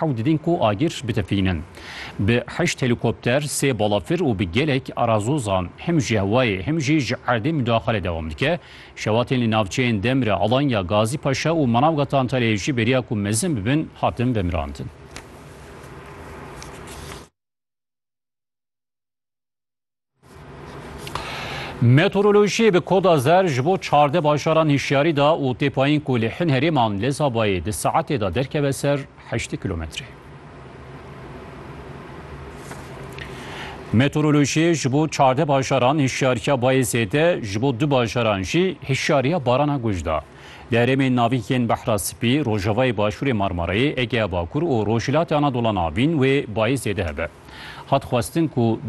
Hewt din ku agir bitefînin. Bi heşt helîkopter, sê balafir û bi gelek arazozan him ji hewayê him jî ji erdê mudaxale dewam dike. Şewatên li navçeyên Demre, Alanya, Gazî Paşa û Manavgata Antalyayê jî bêriya ku mezin bibin hatin vemirandin. Meteorolojiyê bi koda zer ji bo çardeh bajaran hişyarî da û tê payîn ku li hin herêman lê Zabayê di saetê de derkeve ser heştê kilometrê. Meteorolojiyê ji bo çardeh bajaran hişyariya bayê zêde ji bo du bajaran jî hişyariya barana guj da. Li herêmên navîn yên Behra Spî, Rojavayê Başûrê Marmarayê, Egeya Bakur û Rojhilatê Anadola Navîn wê bayê zêde hebe. Hat xwestin ku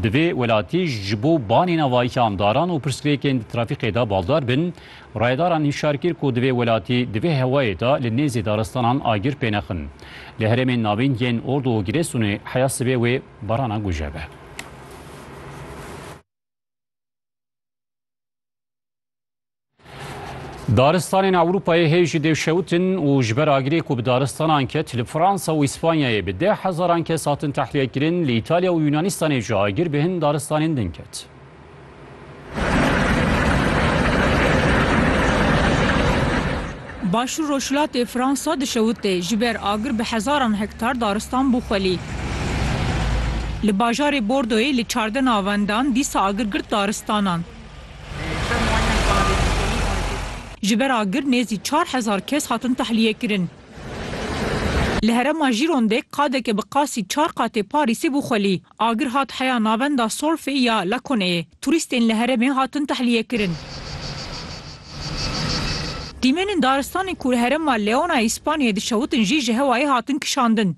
divê welatî ji bo banîna vayikan daran û pirsgirêkên di trafîkê de baldar bin. Rayedaran hişyar kir ku divê welatî di vê hewayê de li nêzî daristanan agir pê nexin. Li herêmên navîn yên Ordu û Girêsûnê heya sibê wê barana guje be. Daristanên Ewropayê hê jî dê şewtin û ji ber agirê ku bi daristanan ket li Fransa û Îspanyayê bi deh hezaran kes hatin tehlîyekirin, li Îtalya û Yûnanistanê jî agir bi hin daristanên din ket. Başûr Rojhilatê Fransa di şewitê ji ber agir bi hezaran hektar daristan bû xwelî. Li bajarê Bordoyê li çardeh navendan dîsa agir girt daristanan. Ji ber agir nêzî çar hezar kes hatin tehlîyekirin. Li herêma Jîrondê qadeke bi qasî çar qatê Parîsê bû xwelî. Agir hat heya navenda Solfê ya Laconeyê. Turîstên li herêmê hatin tehlîyekirin. Dîmenên daristanên ku li herêma Leona yê Spanyayê dişewitin jî ji hewayê hatin kişandin.